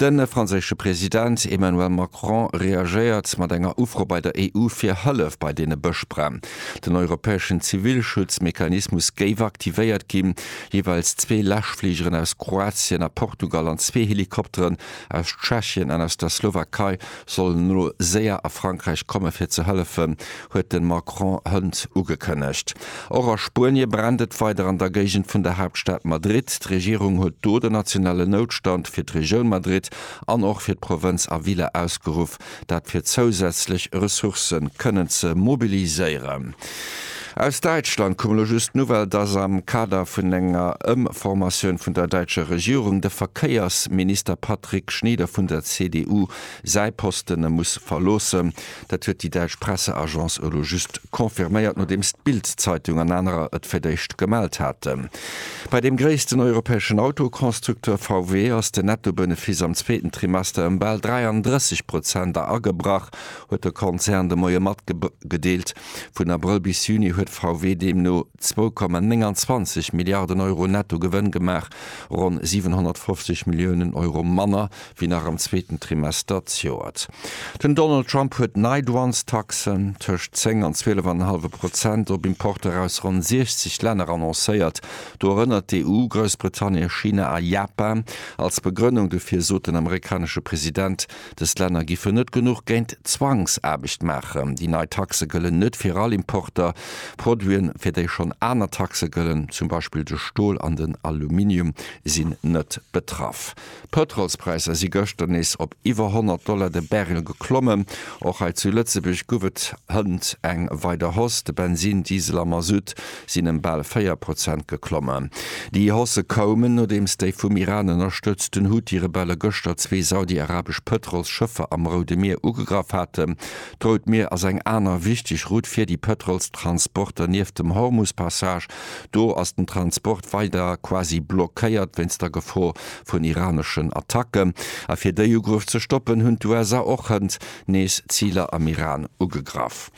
De franséische President Emmanuel Macron reagéiert mat enger Ufro bei der EU fir Hëllef bei deene Bëschbränn. Den europäeschen Zivilschutzmechanismus géif aktivéiert ginn. Jeeweils zwee Läschfligeren aus Kroatien a Portugal an zwee Helikopteren aus Tschechien an aus der Slowakei sollen elo séier a Frankräich komme fir ze hëllefen, huet de Macron hënt ugekënnegt. Och a Spuenie brennt et weider an der Géigend vun der Haaptstad Madrid. D'Regierung huet do den nationalen Noutstand fir d'Regioun Madrid an och fir d'Provënz Avila ausgeruff, dat fir zousätzlech Ressourcë kënnen ze mobiliséieren. Aus Däitschland koum elo just d'Nouvelle, dass am Kader vun enger Ëmformatioun vun der däitscher Regierung de Verkéiersminister Patrick Schnieder vun der CDU säi Posten muss verloossen. Dat huet déi däitsch Presseagence elo just confirméiert, nodeems d'Bild-Zeitung an anerer et fir d'éischt gemellt haten. Bei deem gréissten europäeschen Autoconstructeur VW ass den Netto-Benefiss am zweeten Trimester ëm bal 33 Prozenter agebrach, huet de Konzern de Moie matgedeelt. Vun Abrëll bis Juni huet VW deemno 2,29 Milliarden Euro netto Gewënn gemaach, ronn 750 Milliounen Euro manner wéi nach am zweeten Trimester d'Joert. Den Donald Trump huet nei Douanestaxen, tëscht 10 an 12 an en hallwe Prozent, op Importer aus ronn 60 Länner annoncéiert, dorënner d'EU, Groussbritannien, China a Japan. Als Begrënnung dofir sot den amerikanesche President, Dës Länner giffen net genuch géint Zwangsaarbecht maachen. Déi nei Taxe gëllen net fir all Importer. Produiten, fir déi schonn aner Taxe gëllen, zum Beispill de Stol an den Aluminium, sinn net betraff. D'Pëtrolspräisser si gëschter nees op iwwer 100 Dollar de Barrel geklommen. Och hei zu Lëtzebuerg gouf et hënt eng weider Hausse. De Bensin, Diesel a Masutt sinn ëm bal 4 Prozent geklommen. Déi Hausse koumen, nodeems déi vum Iran ënnerstëtzten Houthi-Rebelle gëschter zwee saudi-arabesch Pëtrolsschëffer am Roude Mier ugegraff haten. D'Rout Mier ass eng aner wichteg Route fir déi Pëtrolstransporter nieft dem Hormus-Passage. Do ass den Transport weider quasi blockéiert wéinst der Gefor vun iraneschen Attacken. A fir déi Ugruff ze stoppen, hunn d'USA och hënt nees Ziler am Iran ugegraff.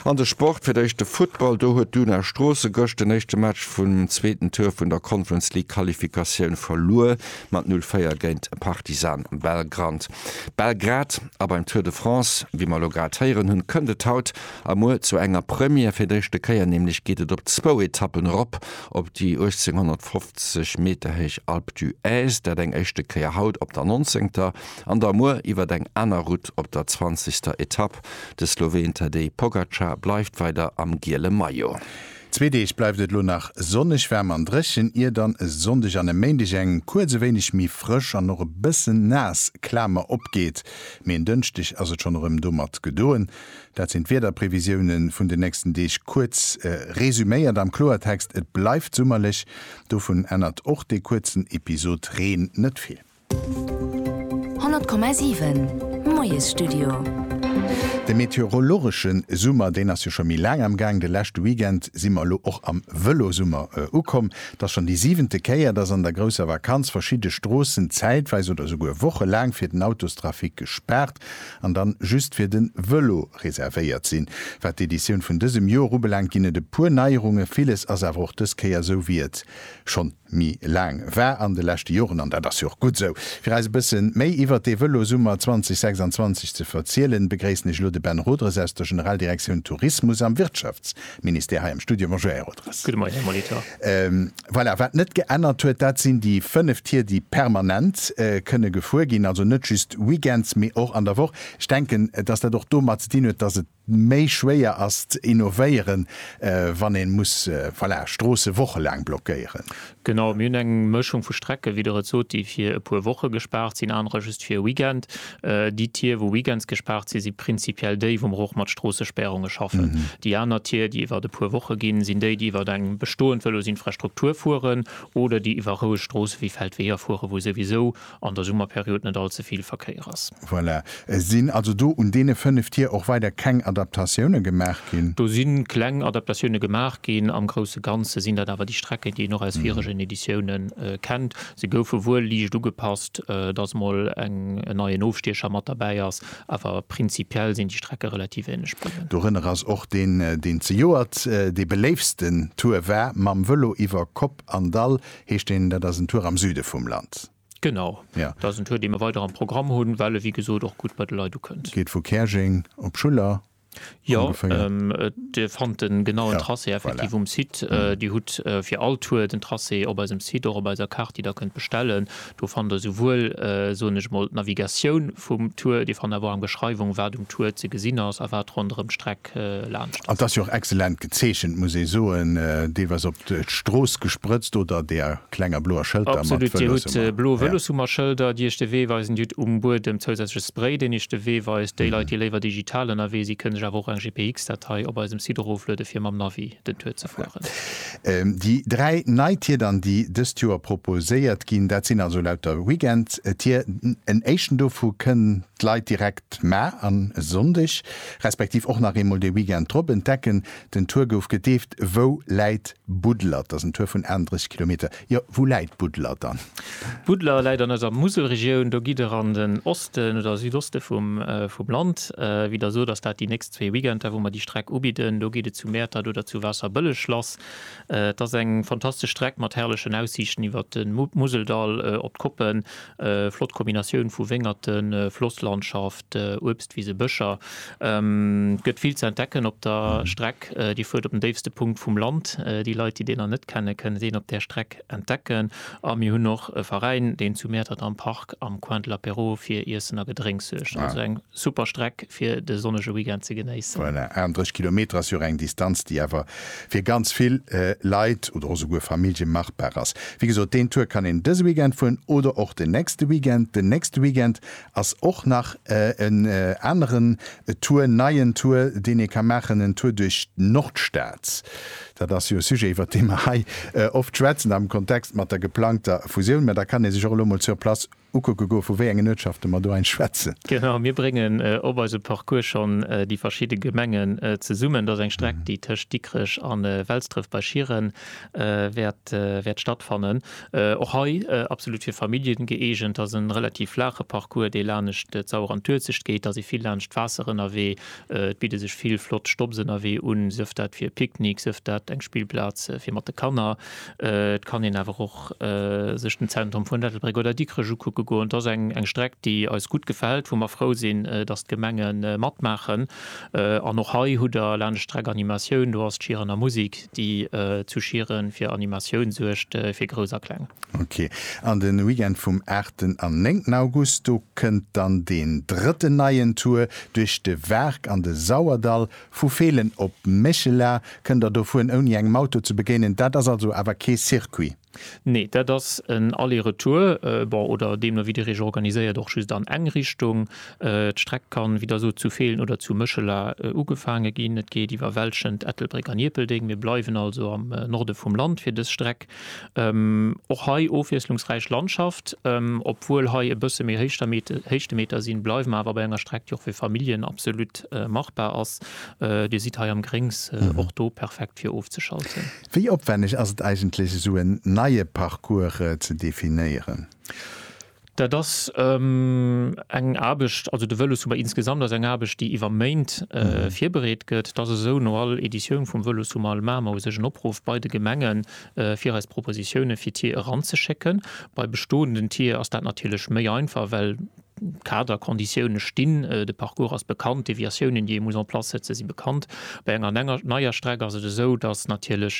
An de Sport, Fir d'éischt de Futtball, do huet d'Una Stroossen gëscht den éischte Match vum zweeten Tour vun der Conference League Qualifikatioun verluer mat 0, 4 géint Partizan Belgrad. A beim Tour de France, wéi mer elo grad héieren hunn, kënnt et haut a muer zu enger Première, fir d'éischte Kéier nämlech geet et op zwou Etappen erop op déi 1850 Meter héich Alpe d'Huez, dat eng éischte Kéier haut op der 19. an da muer iwwert eng aner Route op der 20. Etapp. Etapp. De Sloween Tadej Pogacar bleift weider am giele Maillot. Zwee Deeg bleift et elo nach sonneg, waarm an dréchen, ier dann e Sonndeg an e Méindeg eng kuerz e wéineg méi frësch an och e bëssen naass Klamer opgeet, mee en Dënschdeg ass et schonn erëm domat gedoen. Dat sinn d'Wiederprevisioune vun den nächsten Deeg kuerz resuméiert. Am Kloertext, et bleift summerlech, dovun ännert och dee kuerzen Episod Reen net vill. 100,7 Moiesstudio. De meteorologesche Summer, deen ass jo scho méi laang am Gaang. De leschte Weekend si mer elo och am Vëlosummer ukomm. Et ass schonn déi siwente Kéier, dass an der grousser Vakanz verschidde Stroossen zäitweis oder souguer wochelaang fir den Autostrafic gespaart an dann just fir de Vëlo reservéiert sinn. Wat d'Editioun vun dësem Joer ubelaangt, ginn et e puer Neierunge, villes ass awer och dës Kéier esou wéi et schonn méi laang war an de leschte Joren, an dat ass jo och gutt esou. Fir eis e bësse méi iwwert dee Vëlosummer 2026 ze verzielen, begréissen ech elo de Ben Rodres aus der Generaldirektioun Tourismus am Wirtschaftsministère hei am Studio. Bonjour, Här Rodres. Gudde Moien, Här Molitor. Voilà, wat net geännert huet, dat sinn déi fënnef Tier, déi permanent kënne gefuer ginn, also net just weekends, mee och an der Woch. Ech denken, dass dat och domat ze dinn huet, dass et méi schwéier ass ze innovéieren, wann ee muss, voilà, Stroosse wochelaang blockéieren. Genau, mir hunn eng Mëschung vu Strecke, wéi Der et sot, déi fir e puer Woche gespaart sinn, anerer just fir e Weekend. Déi Tier, wou weekends gespaart sinn, si prinzipiell déi, wou mer och mat Stroossespärunge schaffen. Déi aner Tier, déi iwwer e puer Woche ginn, sinn déi, déi iwwer eng bestoend Vëlosinfrastruktur fueren oder déi iwwer roueg Stroosse wéi Feldweeër fueren, wou souwisou an der Summerperiod net all ze vill Verkéier ass. Voilà. Et sinn also do un deene fënnef Tier och weider keng Adaptatioune gemaach ginn? Do si kleng Adaptatioune gemaach ginn. Am grousse Ganze sinn dat awer déi Strecken, déi een och aus viregen Editioune kennt. Se goufe wuel liicht ugepasst, dass mol en neien Ofstiecher mat derbäi ass, awer prinzipiell sinn déi Strecke relativ änlech bliwwen. Dorënner ass och deen, deen zejoert dee beléiftsten Tour war, mam Vëlo iwwer Kopp an Dall, heescht deen. Dat ass en Tour am Süde vum Land. Genau. Dat ass en Tour, dee mer weider am Programm hunn, well e wéi gesot och gutt bei de Leit ukënnt. Geet vu Käerjeng op Schuller. Jo, Dir fannt de genauen Tracé effektiv um Site. Dir hutt fir all Tour den Tracé op eisem Site, och op eiser Kaart, déi Der kënnt bestellen. Do fannt der souwuel, soen ech emol, d'Navigatioun vum Tour, Dir fannt awer och eng Beschreiwung, wat um Tour ze gesinn ass a wat ronderëm d'Streck laanscht ass. An 't ass jo och excellent gezeechent, muss ee soen, deelweis op d'Strooss gesprëtzt, oder där klenger bloer Schëlter mat Vëloshummer. Absolut, Dir hutt blo Vëloshummerschëlder, déi iech de Wee weisen, Dir hutt um Buedem zousätzleche Spray, deen iech de Wee weist. Déi Leit, déi léiwer digital ënnerwee si, kënne sech awer och eng GPX-Datei op eisem Site erofluede fir mam Navi den Tour ze fueren. Déi dräi nei Tierdern, déi dëst Joer proposéiert ginn, dat sinn also lauter Weekend-Tier. En éischten dovu kënn d'Leit direkt ma an e Sonndeg, respektiv och nach eemol de Weekend drop entdecken. Den Tour gouf gedeeft Wou läit Budler? T'ass en Tour vun 38 Kilometer. Jo, wou läit Budler dann? Budler läit an eiser Muselregioun. Do gitt der an den Osten oder Südoste vum Land. Wéi der sot, ass dat déi nächst. Zwee Weekender, wou mer déi Streck ubidden. Do geet et zu Mäertert oder zu Waasserbëlleg lass. Et ass eng fantastesch Streck mat herrlechen Aussiichten iwwert de Museldall op d'Koppen. Flott Kombinatioun vu Wéngerten, Flosslandschaft, Uebstwisen, Bëscher. Et gëtt vill ze entdecken op der Streck. Dir fuert op den déifste Punkt vum Land. Déi Leit, déi deen nach net kennen, kënnen deen op där Streck Entdecken a mir hunn och e Veräin, deen zu Mäertert am Park am Coin de l'Apéro fir Iessen a Gedrénks suergt. Also eng super Streck fir de sonnege Weekend ze genéissen. Voilà, 38 Kilometer ass jo och eng Distanz, déi awer fir ganz vill Leit oder och esouguer Famillje machbar ass. Wéi gesot, deen Tour kann een dëse Weekend fueren oder och den nächste Weekend. Den nächste Weekend Ass och nach en aneren Tour, neien Tour, deen ee ka maachen, en Tour duerch d'Nordstad. Dat ass jo e Sujet, iwwert dee mer hei oft schwätzen am Kontext mat der geplangter Fusioun. Mä da kann ee sech och elo mol sur place ukucke goe vu wéi engen Uertschafte mer do hei schwätzen. Genau, mir bréngen op eisem Parcours schonn déi verschidde Gemengen zesummen. Dat ass eng Streck, déi tëscht Dikrech a Welsdref bei Schieren wäert stattfannen. Och hei absolut fir Familljen gëeegent. Ass en relativ flaache Parcours dee laanescht d'Sauer an d'Uelzecht geet. Ass ee vill laanscht d'Waasser ënnerwee. Et bidde sech vill flott Stopps ënnerwee un, sëf dat fir e Picknick, sëf dat eng Spillplaz fir mat de Kanner. Et kann een awer och sech den Zentrum vun Ettelbréck oder Dikrech ukucke goen. Et ass eng eng Streck déi eis gutt gefält, wou mer frou sinn dass d'Gemenge matmaachen. An och hei hutt der laanscht d'Streck Animatioun, do ass d'Schieren a Musik. déi zu Schieren fir Animatioun suergt, fir Grouss a Kleng. Ok. An den Weekend vum aachten an néngten August, do kënnt dann deen drëtten neien Tour duerch de Waark an de Sauerdall. Vu Feelen op Méchela kënnt der do fueren ouni engem Auto ze begéinen. Dat ass also awer kee Circuit? Nee, dat ass en Aller-Retour, bon, oder deemno wéi Dir Iech organiséiert, och just an eng Richtung. D'Streck kann, wéi der sot, zu Feelen oder zu Méchela ugefaange ginn. Et geet iwwer Welschent, Ettelbréck an Ierpeldeng. Mir bleiwen also am Norde vum Land fir dës Streck. Och hei ofwiesslungsräich Landschaft. Obwuel hei e bësse méi Héichtemeter sinn, bleiwe mer awer bei enger Streck, déi och fir Familljen absolut machbar ass. Dir sidd hei am Gréngs, och do perfekt fir ofzeschalten. Wéi opwänneg ass et eigentlech esou en neie Parcours ze definéieren? Dat ass eng Aarbecht, also de Vëlossummer insgesamt ass eng Aarbecht, déi iwwer Méint virbereet gëtt. Et ass esou, no all Editioun vum Vëlossummer maache mer u sech en Opruff bei de Gemenge fir eis Propositioune fir Tier eranzeschécken. Bei bestoenden Tier ass dat natierlech méi einfach, well Kader, Konditioune stinn, de Parcours ass bekannt, d'Deviatiounen, déi ee muss en place setze si bekannt. Bei enger enger neier Streck ass et esou, datt natierlech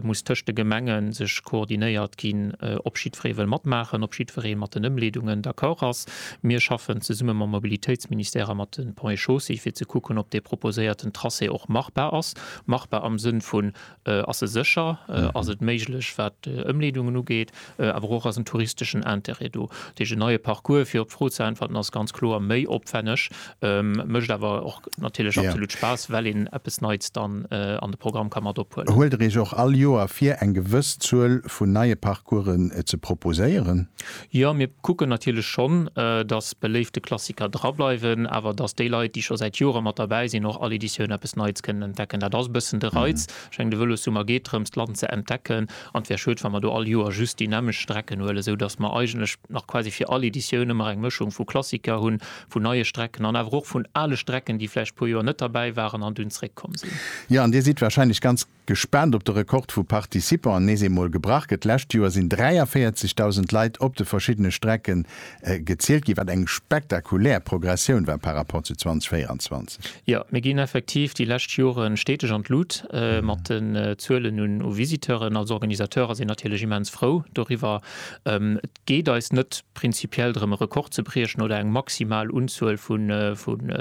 muss tëscht de Gemenge sech koordinéiert ginn, ob jiddweree wëll matmaachen, ob jiddweree mat den Ëmleedungen d'accord ass. Mir schaffen zesumme mam Mobilitéitsministère a mat de Ponts et Chaussées, fir ze kucken, ob dee proposéierten Tracé och machbar ass, machbar am Sënn vun Ass se sécher? Ass et méiglech, wat d'Ëmleedungen ugeet? Awer och, ass en touristeschen Intérêt do? Dat heescht, en neie Parcours, fir op d'Fro ze äntwerten, ass ganz kloer méi opwänneg, mécht awer och natierlech absolut Spaass, well een eppes Neits dann an de Programm ka mat ophuelen. Huelt Der Iech och all Joer vir, eng gewëss Zuel vun neie Parcoursen ze proposéieren? Jo, mir kucken natierlech schonn, datt beléifte Klassiker drableiwen, awer datt déi Leit, déi scho säit Jore mat derbäi sinn, och all Editioun eppes Neits kënnen entdecken. Dat ass e bëssen de Reiz. Ech mengen, de Vëlossummer geet drëms, d'Land ze entdecken, an et wär schued, wa mer do all Joer just déi nämmlecht Strecken huelen, esou datt mer eigentlech nach quasi fir all Editioun ëmmer eng Mëschung vu Klassiker hunn, vun neie Strecken an awer och vun ale Strecken, déi vläicht e puer Joer net derbäi waren an dunn zréckkomm sinn. Jo, an Dir sidd warscheinlech ganz Gespaant op de Rekord vu Participanten, nees eemol gebrach gëtt. D'lescht Joer sinn 43.000 Leit op de verschiddene Strecke gezielt ginn, wat eng spektakulär Progressioun war par Rapport zu 2024. Jo, mir ginn effektiv déi lescht Jore steteg an d'Lut mat den Zuelen u Visiteuren. Als Organisateur ass een natierlech immens frou doriwwer. geet eis net prinzipiell drëm e Rekord ze briechen oder eng maximal Unzuel vu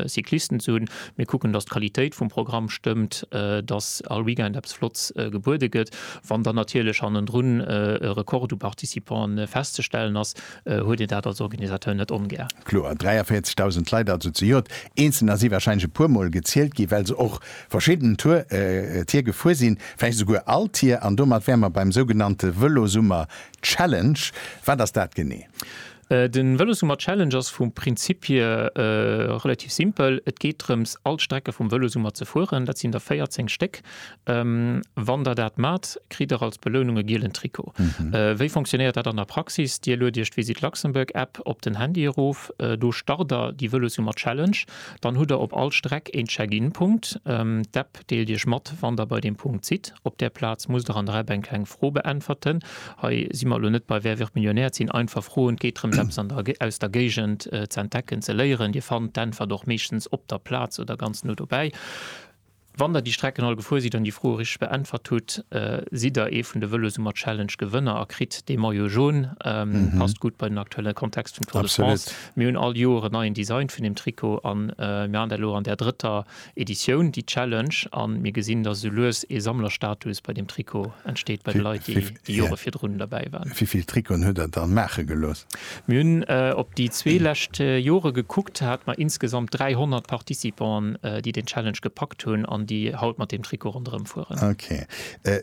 Cyclisten ze hunn. Mir kucken, datt d'Qualitéit vum Programm stëmmt, datt all Weekend eppes Flotts gebuede gëtt. Wann dann natierlech hannendrun e Rekord u Participanten festzestellen ass, huet een dat als Organisateur net ongär. Kloer, 43.000 Leit also zejoert. Eenzelner si warscheinlech e puermol gezielt ginn, well se och verschidden Tier gefuer sinn, vläicht esouguer all Tier. An domat wäre mer beim sougenannte Vëlosummer Challenge, wat ass dat genee? De Vëlossummer Challenge ass vum Prinzip hier relativ simpel. Et geet drëms all d'Strecke vum Vëlosummer ze fueren. Dat sinn der 14 Stéck. Wann der dat mat, kritt der als Belounung e gielen Trikot. Wéi fonctionnéiert dat an der Praxis? Dir lued iech d'Visit Luxembourg App op den Handy erof. Do start der déi Vëlossummer Challenge. Dann hutt der op all Streck een Check-in Punkt. D'App Deelt Iech mat, wann Der bei deem Punkt sidd. Op där Plaz musst Der an der App eng kleng Fro beäntwerten. Hei si mer elo net bei Wer wird Millionär? Et sinn einfach Froen. Et geet drëms, eppes an der, aus der Géigend z'entdecken, ze léieren. Dir fannt d'Äntwert och meeschtens op der Plaz oder ganz no dobäi. Wann Der déi Strecken all gefuer sidd an déi Froe richteg beäntwert hutt, sidd Der ee vun de Vëlossummer-Challenge Gewënner a kritt dee Maillot jaune. Passt gutt bei den aktuelle Kontext vum Tour de France. Mir hunn all Joer en neien Design vun deem Trikot an mir an der elo an där drëtter Editioun, déi Challenge, a mir gesinn, datt esou lues ee Sammlerstatus bei deem Trikot entsteet bei de Leit, déi déi Jore virdrun derbäi waren. Wéi vill Trikoten huet Der dann maache gelooss? Mir hunn op déi zwee lescht Jore gekuckt, hate mer insgesamt 300 Participanten, déi deen Challenge gepackt hunn an déi haut mat deem Trikot ronderëm fueren. Ok.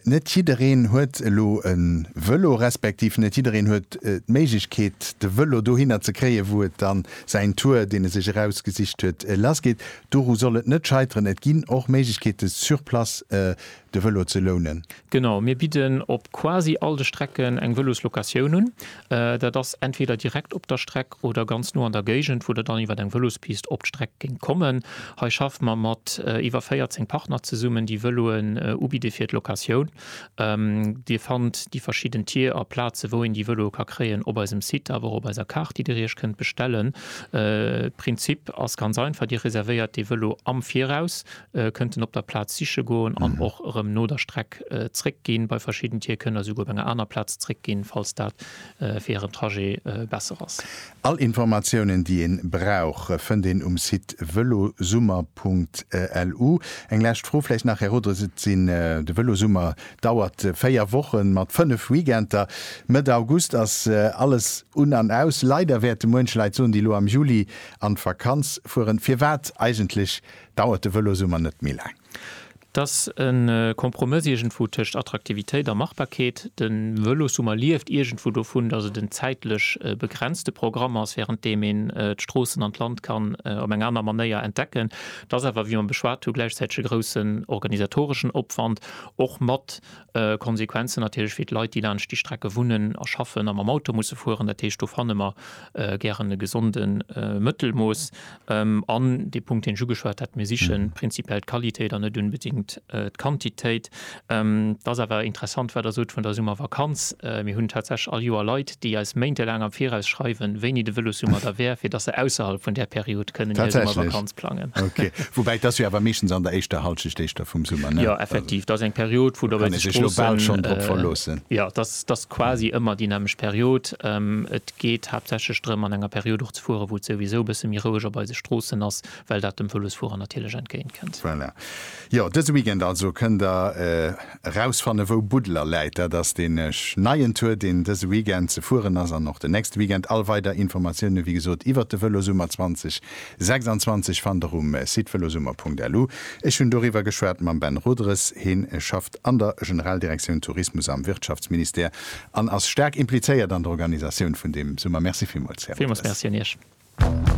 Net jiddereen huet elo e Vëlo, respektiv net jiddereen huet d'Méiglechkeet, de Vëlo dohinner ze kréien, wou et dann säin Tour, deen e sech erausgesicht huet, lassgeet. Doru soll et net scheiteren, et ginn och Méiglechkeete sur place de Vëlo ze lounen. Genau, mir bidden op quasi all de Strecken eng Vëloslocatioun un. Dat ass entweder direkt op der Streck oder ganz no an der Géigend, wou Der dann iwwer eng Vëlospist op d'Streck géingt kommen. Hei schaffe mer mat iwwer 14 Partner zesummen, déi Vëloen ubidde fir d'Locatioun. Dir fannt déi verschidden Tier a Plaze wou een déi Vëloe ka kréien op eisem Site awer och op eiser Kaart déi Dir Iech kënnt bestellen. Prinzip ass ganz einfach, Dir reservéiert dee Vëlo am Viraus, kënnt en op der Plaz siche goen an och erëm no der Streck zréck ginn. Bei verschidden Tier kënnt der souguer op enger aner Plaz zréck ginn, falls dat fir hiren Trajet besser ass. All Informatiounen déi een brauch fënnt een um Site velosummer.lu. Eng lescht Fro vläicht nach, Här Rodres, et sinn, de Velosummer dauert 4 Wochen mat 5 Weekenter. Mëtt August ass alles un an aus. Leider wäerte muench Leit soen, déi elo am Juli an d'Vakanz fueren, firwat eigentlech dauert de Velosummer net méi laang? T'ass e Kompromëss iergendwou tëscht Attraktivitéit a Machbarkeet. De Vëlossummer lieft iergendwou dovun, datt et en zäitlech begrenzte Programm ass, während deem een d'Stroossen an d'Land kann op eng aner Manéier entdecken. T'ass awer, wéi mer beschwat hu, gläichzäiteg e groussen organisatoreschen Opwand, och mat Konsequenzen natierlech fir d'Leit, déi laanscht déi Strecke wunnen a schaffen a mam Auto musse fueren. Dat heescht, do fanne mer gären e gesonde Mëttelmooss. An dee Punkt, deen ech ugeschwat hat, mir siche prinzipiell d'Qualitéit an net unbedéngt d'Quantitéit. Et ass awer interessant, wat Der sot vun der Summervakanz. Mir hunn tatsächlech all Joer Leit, déi eis méintelaang am Viraus schreiwen, wéini de Vëlossummer da wär, fir dass se ausserhalb vun där Period kënnen hir Summervakanz plangen. Ok, woubäi dass jo awer meeschtens an der éischter Halschecht éischter vum Summer, ne? Jo, effektiv, dass eng Period, wou dobäi sech d'Stroossen, jo, dass dass quasi ëmmer déi nämmeg Period. Et geet haaptsächlech drëm, an enger Period och ze fueren, wou et souwisou e bësse méi roueg op eise Stroossen ass, well dat dem Vëlosfuerer natierlech entgéintkënnt. Voilà. Jo, dëse Weekend also kënnt Der. Erausfanne wou Buddeler läit, dat ass deen neien Tour deen dëse Weekend ze fueren ass an och den nächste Weekend. All weider Informatioune wéi gesot iwwert de Vëlosummer 2026 fannt der um Site velosummer.lu. Ech hunn doriwwer geschwat mam Ben Roederes, hien schafft an der Generaldirektioun Tourismus am Wirtschaftsministère an ass staark implizéiert an der Organisatioun vun deem Summer. Merci villmools Här Roederes. Villmools Merci un Iech.